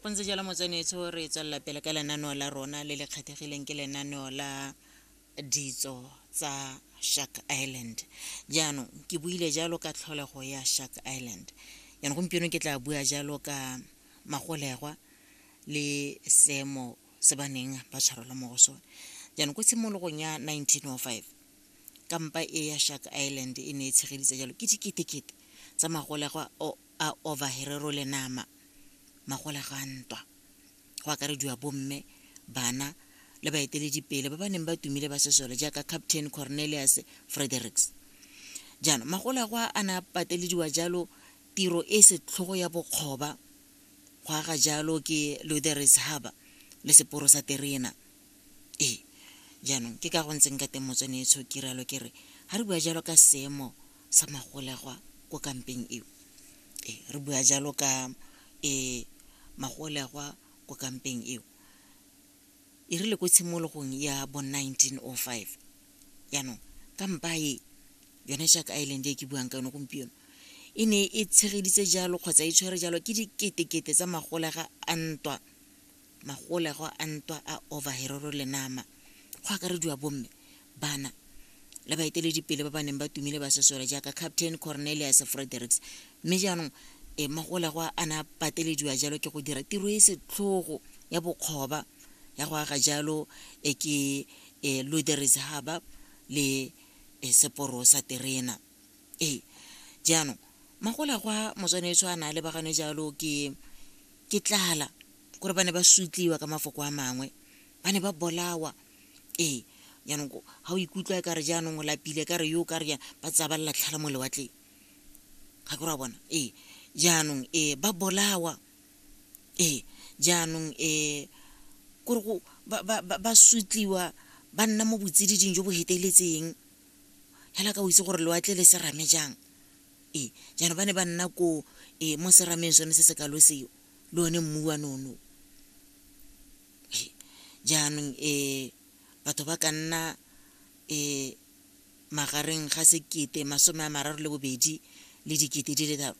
go ntse jalo motsenetso re tswelela pele ka lenaneo la rona le le kgethegileng ke lenaneo la ditso tsa shark island jaanong ke buile jalo ka tlholego ya shark island jaanong gompieno ke tla bua jalo ka magolegwa le seemo se ba neng ba tshwarelwa mo go sone jaanong ko tshimologong ya 1905 kampa e ya shark island e ne e tshegeditse jalo ke diketekete tsa magolegwa a overherero le nama magole ga ntwa go akarediwa bomme bana le baeteledipele ba ba neng ba tumile ba sesole jaaka captain cornelius fredericks jaanong magole go a na patelediwa jalo tiro e setlhogo ya bokgoba go aga jalo ke lutheris harbor le seporo sa terena ee jaanong ke ka go ntseng ka teng motsone e tshokiralo ke re ga re bua jalo ka seemo sa magolegwa ko kampeng eo e re bua jalo ka e magolegwa ko kampeng eo e rile ko tshimologong ya bo 1905 jaanong kampa e yone jack island e ke buang ka yone gompieno e ne e tshegeditse jalo kgotsa e tshwere jalo ke diketekete tsa magolega a ntwa magolego a ntwa a overheroro le nama, go akarediwa bomme, bana le baeteledipele ba ba neng ba tumile ba sesole jaaka Captain Cornelius Fredericks, mme jaanong e magolego a ne a patelediwa jalo ke go dira tiro e setlhogo ya bokgoba ya go aga jalo e ke e Luderis Harbour le e seporo sa terena. Ee, jaanong, magola gwa motswanetso a na a lebaganwe jalo ke ke tlala gore ba ne ba sutliwa ka mafoko a mangwe ba ne ba bolawa ee jaanong ga o ikutlwa e ka re jaanong o lapile ka re yo o ka re jaana ba tsaya ba lelatlhala mo lewatleng ga ke ra bona ee jaanong ee ba bolawa ee jaanong ee kore go ba sutliwa ba nna mo botsididing jo bo feteletseng fela ka o itse gore lewatle le serame jang ee jaanong ba ne ba nna ko ee mo serameng sone se se kalo seo le one mmu wa nono jaanong um batho ba ka nna um magareng ga sekete masome a mararo le bobedi le dikete di le tharo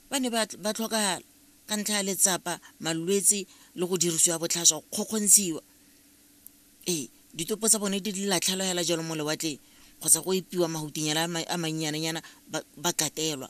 ba ne ba tlhokagala ka ntlha ya letsapa malwetse le go dirisiwa botlhaswa go kgokgontshiwa Ee, ditopo tsa bone di latlhelwa hela jalo mo lewatleng kgotsa go epiwa mahutinyana a mannyananyana ba katelwa.